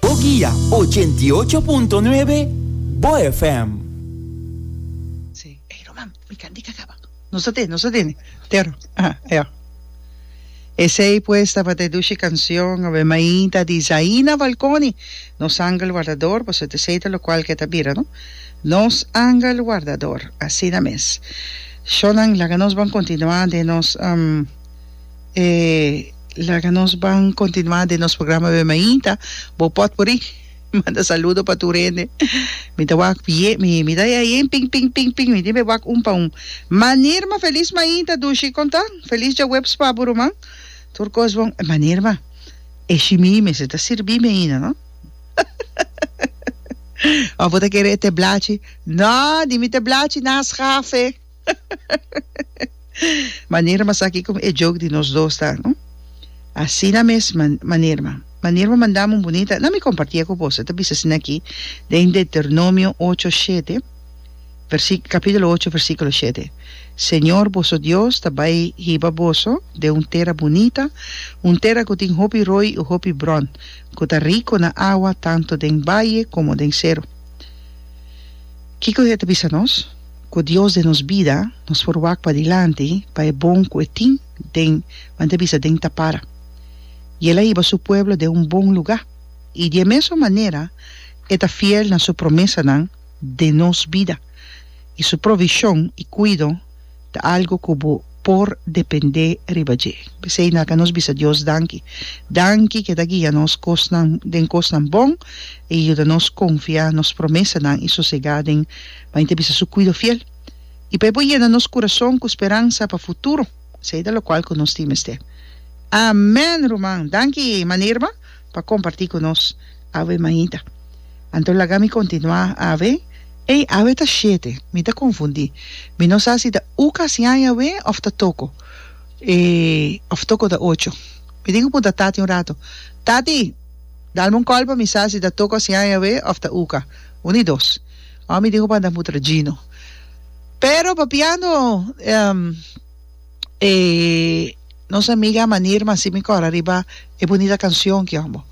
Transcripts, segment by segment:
Boguia, ochenta i ocho punto nuebe, bo FM. Esey pues tabata e dushi cancion a be mainta di Zaina Valconi, Nos Angel Wardador, boso ta sei ta locual ke ta bira no? Nos Angel Wardador, asina mes. Sho nan laga nos ban continua den nos E laga nos ban continuá den nos programa Be Mainta. Bo pòt por i manda saludo pa tur hende. Mi ta wak pie, mi, mi ta ya yen ping, ping, ping, ping. Mi tin be wak un pa un. Ma Nirma, felis mainta, dushi konta. Felis djaweps pa bo ruman. Tur kos bon. Ma Nirma, e shimí mester ta sirbí mi ainda, no? Òf bo ta kere e te blachi? No, di mi te blachi na schafe. Manera mas aki con e joke di nos dos ta no asina mes manera manera manda un bonita na mi compartia cu boso ta bisa asina aki den Deuteronomio ocho shete versiculo capitulo ocho versiculo shete Señor boso Dios ta bai hiba boso den un tera bonita un tera cu tin hopi roi y hopi bron cu ta rico na awa tanto den baye como den sero kico e ta bisa nos. ku Dios den nos bida, nos por wak padilanti pa e bon ku e tin den Juan ta bisa den ta para. I el a hiba su pueblo den un bon lugá, i di e mesun manera e ta fiel na su promesanan den nos bida, i su provishon i kuido ta algu ku bo por dependé riba dje. P'esei nan ka nos bisa Dios danki. Danki ku e ta guia nos kosnan den kosnan bon, e yuda nos konfia nos promesanan i sosegá den. pa He ta bisa Su cuido fiel, y pa He por yena nos curason cu speransa pa futuro, esey ta locual cu nos tin mester. Amen, ruman! Danki, Mana Irma, pa comparti cu nos. Awe, Maita. Anto laga mi continua, awe. Ey, awe ta shete. Mi ta confundi. Mi no sa si ta u casi aña awe of ta toco. E, of toco ta ocho. Mi tin cu punta tati un rato, Tati! Dalme un call pa mi sa si ta toco asi aña awe of ta uca. Un ni dos. Awa mi tin ku banda mutra Gino. Pero papiando e nos amiga Manir Masi mi kòrda riba e bunita kansion ki amo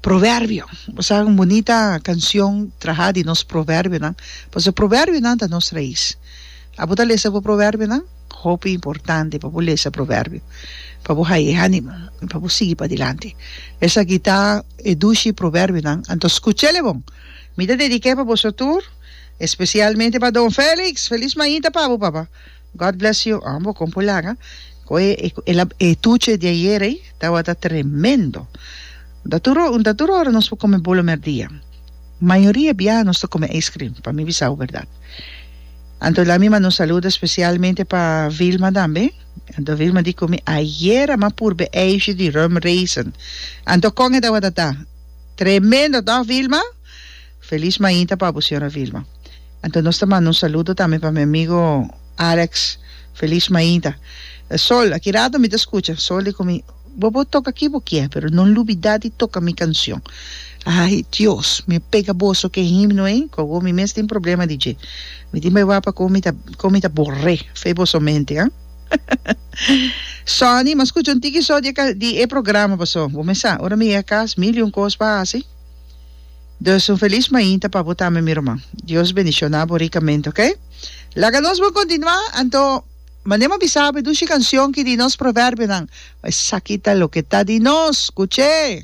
Proverbio. Bo sa un bunita kansion trahá di nos proverbionan pasobra proverbionan ta nos rais. A bo ta lesa bo proverbionan? Hopi importante pa bo lesa proverbio pa bo haña e ánimo i pa bo sigui padilanti. Esaki ta e dushi proverbionan, anto skucha el e bon. Mi ta dedic'é pa boso tur, especialmente pa Don Felix, Feliz Mainta pa bo papa. God bless you ambo con por laga cu e e tuche di ayer ey tawata tremendo. Ta tur ora ta tur ora nos por come bolo merdia. Mayoria biaha nos ta come ice cream pa mi bisao berdad. Anto la mi manda un saludo especialmente pa Vilma tambe. Anto Vilma di cu mi ayer a ma purbe ijsje di rum raisin. Anto con e tawata ta? Tremendo toch Vilma? Feliz mainta pa bo señora Vilma. Anto nos ta manda un saludo tambe pa mi amigo Alex. Feliz mainta. Sol, aki rato mi ta scucha. Sol di cu mi, Bo por toca aki bo kier, pero no lubida di toca mi cancion. Ay Dios, mi a pega boso cu e himno ey, cu awor mi mes tin problema di dje. Mi tin bay wak pa con mi ta, con mi ta borre. Fe boso mente, ah. Sonny, m'a scucha un tiki so di e, di e programa paso. Bo me sa, ora mi yega cas, mil y un cos pa haci. Dus un feliz mainta pa bo tambe, mi ruman. Dios bendiciona bo ricamente, ok? Laga nos bon continua, anto, mane m'a bisa bo e dushi cancion ki di nos proverbionan, Esaki ta loke ta di nos, scuch'e!